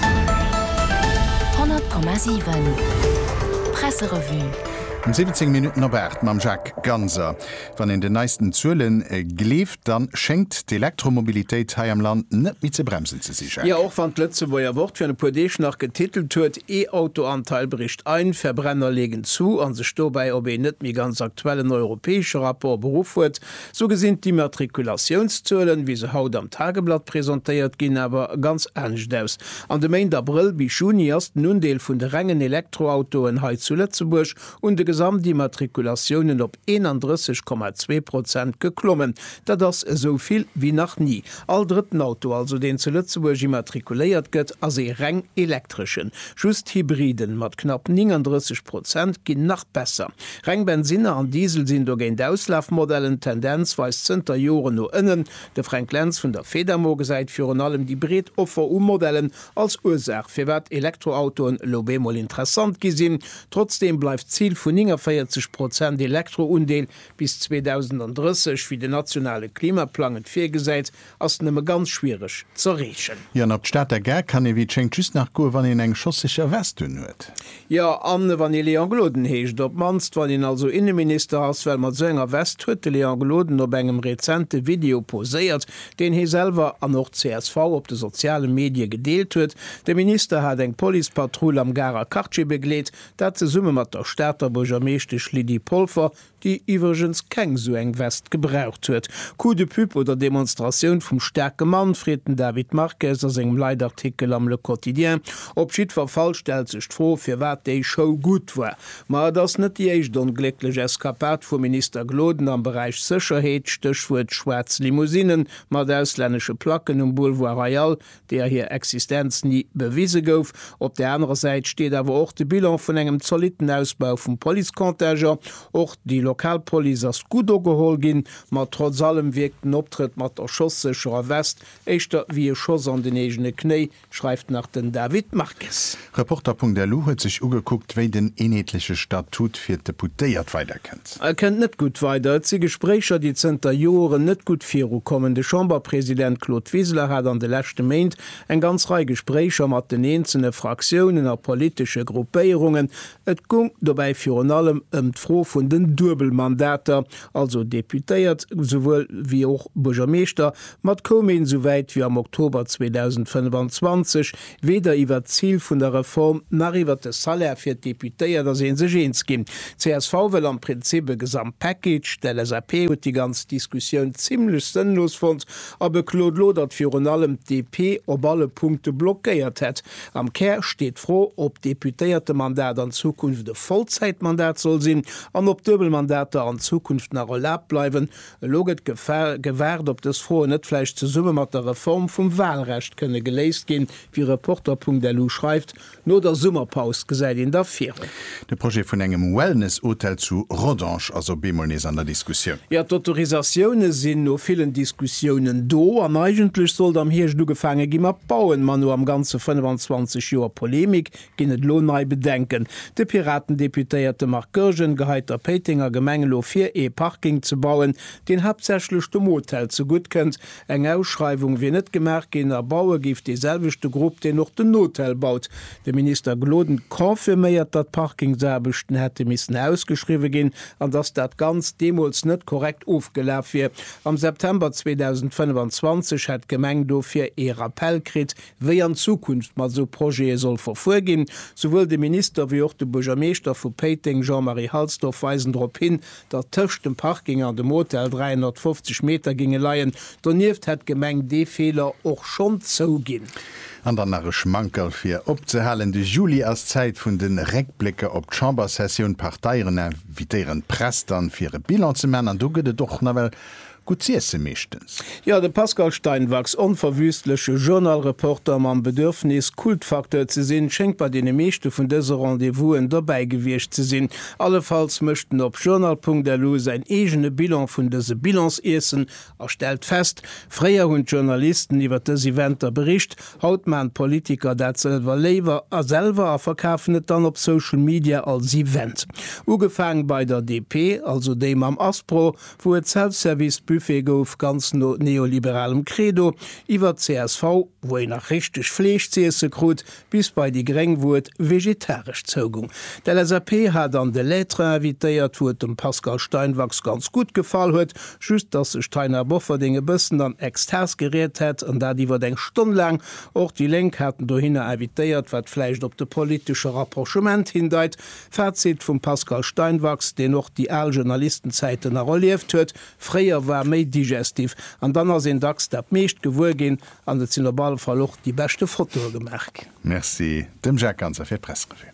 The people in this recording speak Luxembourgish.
100,7 Presserevue. Um 17 Minutten op 8 mam Jacques Ganser. Wann een den neisten Zuele gleeft, da schéngt d'Elektromobilitéit hei am Land net méi ze bremsen ze sinn, Jo, Jacques. och wann d'Lëtzebuerger Wort virun e puer Deeg nach getitelt huet, E-Auto-Anteil bricht ein, Verbrenner legen zu a sech dobäi op een net méi ganz aktuellen europäesche Rapport beruff huet, Sou gesinn d'Immatrikulatiounszuelen, wéi se haut am Tageblatt presentéiert ginn, awer ganz anescht aus. An de Méint Abrëll bis Juni ass den Undeel vun de rengen Elektroautoen hei zu Lëtzebuerg un de Gesamtimmatrikulatiounen op 31,2 Prozent geklommen. Dat ass esou vill wéi nach ni. All drëtten Auto also, deen zu Lëtzebuerg immatrikuléiert gëtt, ass ee reng elektreschen. Just Hybriden mat knapp 39 Prozent ginn nach besser. Reng Bensinner an Diesel sinn dogéint Auslafmodellen, d'Tendenz weist zënter Joren no ënnen. De Fränk Lentz vun der Fedamo gesäit virun allem déi breet Offer u Modellen als Ursaach, firwat Elektroautoen elo bemol interessant gi sinn. Trotzdeem bleift d'Zil vun 49 Prozent Elektroundeel bis 2030, wéi den nationale Klimaplang et virgesäit, Ass nëmme ganz schwiereg z'erreechen. Jo, an op d'Stater Gare kann ee wéi et schéngt just nach goe wann een eng schosseger Veste un huet. Jo, an wann ee Léon Gloden heescht. Op mannst wann een also Inneminister ass, well mat esou enger Veste huet de Léon Gloden op engem rezente Video poséiert, deen hee selwer an och csv op de soziale Medie gedeelt huet. De Minister hat eng Policepatrull am Garer Quartier begleet, dat zesumme mat der Stater Buergermeeschtesch Lydie Polfer, déi iwwregens keng sou eng West gebraucht huet, Coup de pub oder Demonstratioun vum staarke Mann, freet den David Marques a sengem Leitartikel am Le Quotidien. Op jiddwer Fall stellt sech d'Fro, firwat déi Show gutt war. Ma et ass net déi éischt onglécklech Eskapad vum Minister Gloden am Beräich Sécherheet, Stéchwuert schwaarz Limousine mat auslännesche Placken um Boulevard Royal, deer hir Existenz ni bewise gouf. Op der anerer Säit steet awer och de Bilan vun engem zolitten Ausbau vum Policecontingent. Och déi lokal Police ass gutt ugeholl ginn, ma trotz allem wierkt den Optrëtt mat der schosssécherer West éischter wéi e Schoss an den eegene Knéi, schreift nach den David Marques. Reporter.lu huet sech ugekuckt, wéi den eenheetleche Statut fir d'Deputéiert weider kënnt. E kënnt net gutt weider. Et si Gespréicher, déi zënter Joren net gutt virukommen. De Chamberpresident Claude Wiseler hat an de leschte Méint eng ganz Rei Gespréicher mat den eenzele Fraktiounen a politesche Gruppéierungen. Et gung dobäi virun allem ëm d'Fro vun den Duebelmandater, also Deputéiert souwuel wéi och Buergermeeschter. Mat koum een esou wäit wéi am Oktober 2025. Weder iwwert d'Zil vun der Reform nach iwwert de Salaire fir d'Deputéiert ass ee sech eens ginn. Csv wëll am Prinzip e Gesamtpackage. D'LSAP huet déi ganz Diskussioun zimmlech sënnlos fonnt a beklot lo, datt virun allem d'DP op alle Punkte blockéiert hätt. Am Kär steet d'Fro, ob d'Deputéiertemandat an Zukunft e Vollzäitmandat soll sinn an ob Duebelmandater an Zukunft nach erlaabt bleiwen. Elo gëtt gewaart, ob dës Froen net vläicht zesumme mat der Reform vum Walrecht kënne geléist ginn. Wéi Reporter.lu schreift, no der Summerpaus gesäit een da virun. De Projet vun engem Wellness-Hotel zu Rodange ass op eemol nees an der Diskussioun. Jo, d'Autorisatioune sinn no villen Diskussiounen do an eigentlech sollt am Hierscht ugefaange gi mat bauen, ma no am Ganze 25 Joer Polemik Ginn et elo nei Bedenken? De Piraten-Deputéierte Marc Goergen geheit der Péitenger Gemeng elo vir, ee Parking ze bauen, deen haaptsächlech dem Hotel zegutt kënnt. Eng Ausschreiwung wier net gemaach ginn a baue géif dee selwechte Grupp, deen och den Hotel baut. De Minister Gloden confirméiert, datt d'Parkingsaarbechten hätte missen ausgeschriwwe ginn an datt dat Ganzt deemools net korrekt ofgelaf wier. Am September 2025 hätt d'Gemeng dofir ee Rappell kritt, Wéi an Zukunft mat esou Projete soll verfuer ginn? Souwuel de Minister wéi och de Buergermeeschter vu Péiteng, Jean-Marie Halsdorf, weisen drop hin, datt tëscht dem Parking an dem Hotel 350 Meter géinge leien. Donieft hätt d'Gemeng dee Feeler och schonn zouginn. An dann nach e Schmankerl fir opzehalen, De Juli ass d'Zäit vun de Réckblécker op d'Chambersessioun. D'Parteieren invitéieren d'Press dann, fir e Bilan ze maachen. An do gëtt et och nawell Gutt z'iesse meeschtens. Jo, de Pascal Steinwachs, onverwüstleche Journal-Reporter mam Bedürfnis, Kultfacteur ze sinn, schéngt bei deene meeschte vun dëse Rendez-vousen dobäi gewiescht ze sinn. Allefalls mécht en op journal.lu säin eegene Bilan vun dëse Bilans-Iessen a stellt fest, Fréier hunn d'Journalisten iwwer dës Eventer bericht, haut maachen d'Politiker dat sëlwer léiwer a selwer a verkafen et dann op Social Media als Event. Ugefaang bei der DP, also déi mam Aspro, wou et Self-Service-Buffet gouf, ganz no neoliberalem Credo, iwwer csv, wou een nach richteg Fleesch z'iesse krut, bis bei déi Gréng, wou et vegetaresch zougung. D'LSAP hat an de L'Être invitéiert, wou et dem Pascal Steinwachs ganz gutt gefall huet, just dass sech d'Taina Bofferding e bëssen an Extas geriet hätt, an dat iwwer eng Stonn laang. Och déi Lénk haten dohinner invitéiert, wat vläicht op de politesche Rapprochement hindeit. Fazit vum Pascal Steinwachs, deen och déi al Journalistenzäiten nach erlieft huet, Fréier war méi digestif, an dann ass een dacks dat meescht gewuer ginn an et sinn op alle Fall och déi beschte Fotoe gemaach ginn. Merci dem Jacques Ganser fir d'Pressrevue.